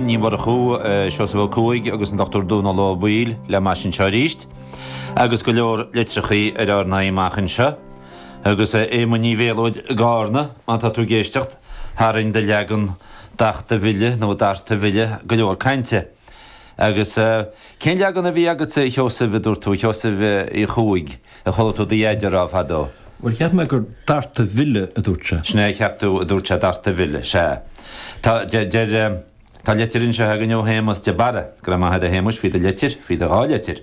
Ní Mhurchú, Seosamh Ó Cuaig agus an Dr Dónall Ó Baoill le m'ais anseo arís, agus go leor litreacha ar ár n-aghaidh amach anseo, agus a Éamoinn Uí Mhéalóid i gCarna, má tá tú ag éisteacht, tharraing do leagan dachta bhile, nó darta bhile, go leor cainte. Agus cén leagan a bhí agatsa, a Sheosaimh, a dúirt tú, a Sheosaimh Uí Chuaig? A chuala tú do dheaide a rá fadó? Bhuel, cheap mé gur darta bhile, a dúirt sé. Sin é a cheap tú, a dúirt sé, darta bhile. Sea. Tá, deir, deir, tá leitir anseo againne ó Shéamas de Barra. Go raibh maith agat, a Shéamais, faoi do leitir, faoi do dhá leitir.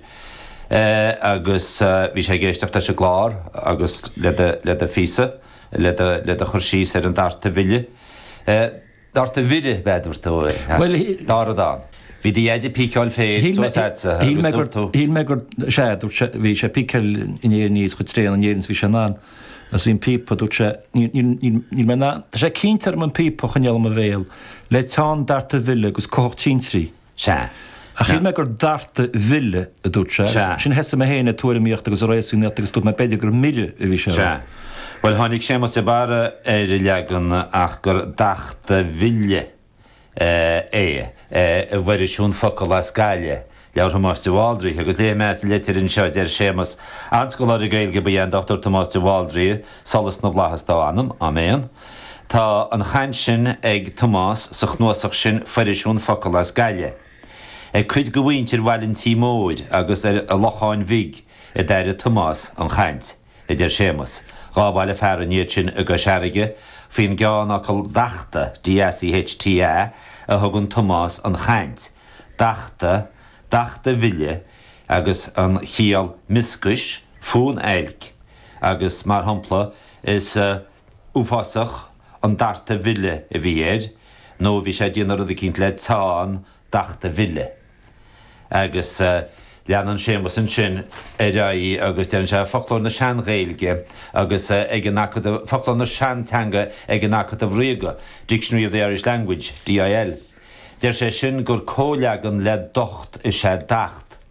Eh, agus bhí sé ag éisteacht leis an gclár agus le do, le do phíosa, le do, le do chur síos ar an darta bhile. Eh. Darta bhile, b'fheadar tú é, ha? Bhuel, shí-. Dar a d'fhan. Bhí do dhaid ag píceáil féir Shíl mé. suas a'tsa, shíl mé agus gur. dúirt tú. Shíl mé gur. sea, dúirt sé, bhí sé ag píceáil an fhéir aníos chomh tréan in Éirinn is bhí sé in ann. Agus bhí an píopa, dúirt sé, níl, níl, níl, níl mé in ann, tá sé cinnte orm an píopa a choinneáil i mo bhéal, le teann darta bhile agus cuthach tintrí. Sea. Ach shíl mé gur darta bhile a dúirt sé agus ansin thosaigh mé féin ag tuairimíocht agus ag réasúnaíocht agus dúirt mé b'fhéidir gur mire a bhí sé a rá. Sea. Bhuel, tháinig Séamas de Barra ar an leagan ach gur dachta bhile é. I bhFoirisiún Focal as Gaillimh, leabhar Thomáis de Bhaldraithe, agus léifidh mé as an leitir anseo, deir Séamas, An-scoláire Gaeilge ba ea an Dr Tomás de Bhaldraithe, Solas na bhFlaitheas dá anam. Áiméan. Tá an chaint sin ag Tomás sa chnuasach sin Foirisiún Focal as Gaillimh. Ag cuid de mhuintir Bhaile an Tí Mhóir agus an Locháin Bhig a d'airigh Tomás an chaint, a deir Séamas. Dhá bhaile fearainn iad sin i gCois Fharraige faoin gceannfhocal dachta, DACHTA, a thugann Tomás an chaint, dachta, dachta bhile, agus an chiall mioscais, fonn oilc, agus mar shampla is uafásach an darta bhile a bhí air nó bhí sé ag déanamh rud eicínt le teann dachta bhile. Agus leanann Séamas ansin ar aghaidh agus deireann sé, Foclóir na Sean-Ghaeilge agus ag an Acadamh, Foclóir na Seanteanga ag an Acadamh Ríoga, Dictionary of the Irish Language, DIL. Deir sé sin gur comhleagan le docht is ea dacht.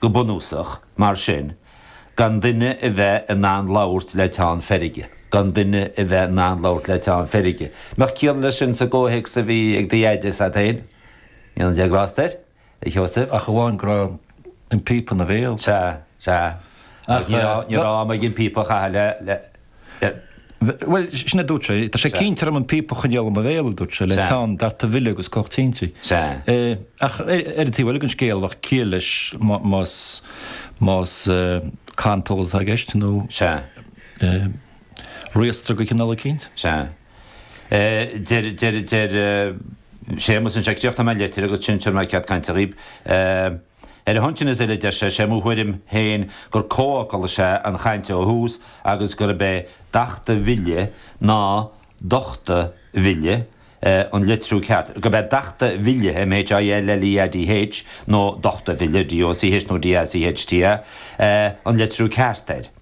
Go bunúsach, mar sin, gan duine a bheith in ann labhairt le teann feirge. gan duine a bheith in ann labhairt le teann feirge. An mbeadh ciall leis sin sa gcomhthéacs a bhí ag do dheaide is agat féin. Go ndéana Dia grásta air, a Sheosaimh. Ach amháin go raibh an píopa ina bhéal. Sea, sea. Ach ní raibh am aige an píopa a chaitheamh le. Bhuel, sin a dúirt sé. Tá sé cinnte orm an píopa a choinneáil i mo bhéal, a dúirt sé, le teann darta mhille agus cuthach tintí. Ach ar an taobh eile den scéal, bheadh ciall leis más, más cantal atá i gceist nó riastradh de chineál eicínt. Sea. Deir, deir, deir Séamas anseo, críochnóidh mé an leitir agus ansin tabharfaidh mé cead cainte dhaoib, Ar a shon sin is uile, deir sé, sé mo thuairim féin gur comhfhocal is ea an chaint ó thús agus gurb é dachta mhilleadh nó dochta mhilleadh an litriú ceart, gurb é dachta mhilleadh, MHILLEADH, nó dochta mhilleadh, DOCH nó DACHTA, an litriú ceart air.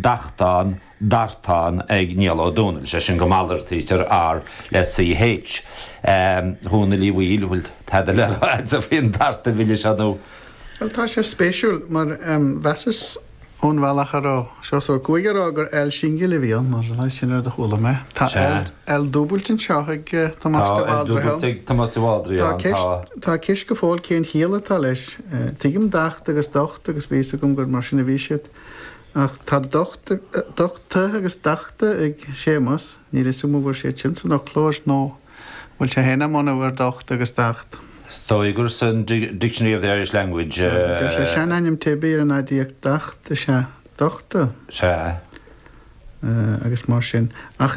dachtán, dartán ag Niall Ó Dónaill, sé sin go malartaítear R le CH. A Dhónaill Uí Bhaoill, an bhfuil tada le rá agatsa faoin darta mhille seo nó? Bhuel, tá sé spéisiúil, mar mheasas ón bhealach a raibh Seosamh Ó Cuaig ag rá gur L singil a bhí ann, nó sin an rud a chuala mé. Tá L L dúbailte anseo ag Tomás de Bhaldraithe. Tá L dúbailte ag Tomás de Bhaldraithe ann, tá. Tá ceist go fóill cén chiall atá leis. Tuigim dacht agus docht agus bhí fhios agam gur mar sin a bhí siad. Ach tá dochta agus dachta ag Séamas, níl 'fhios agam an bhfuair sé iad sin san fhoclóir nó an bhfuil sé féin á mbunú ar dhocht agus dacht. Tugtar san Dictionary of the Irish Language. Deir sé seanainm teibí ar an aidiacht dacht is ea dochta. Sea. agus mar sin. Ach.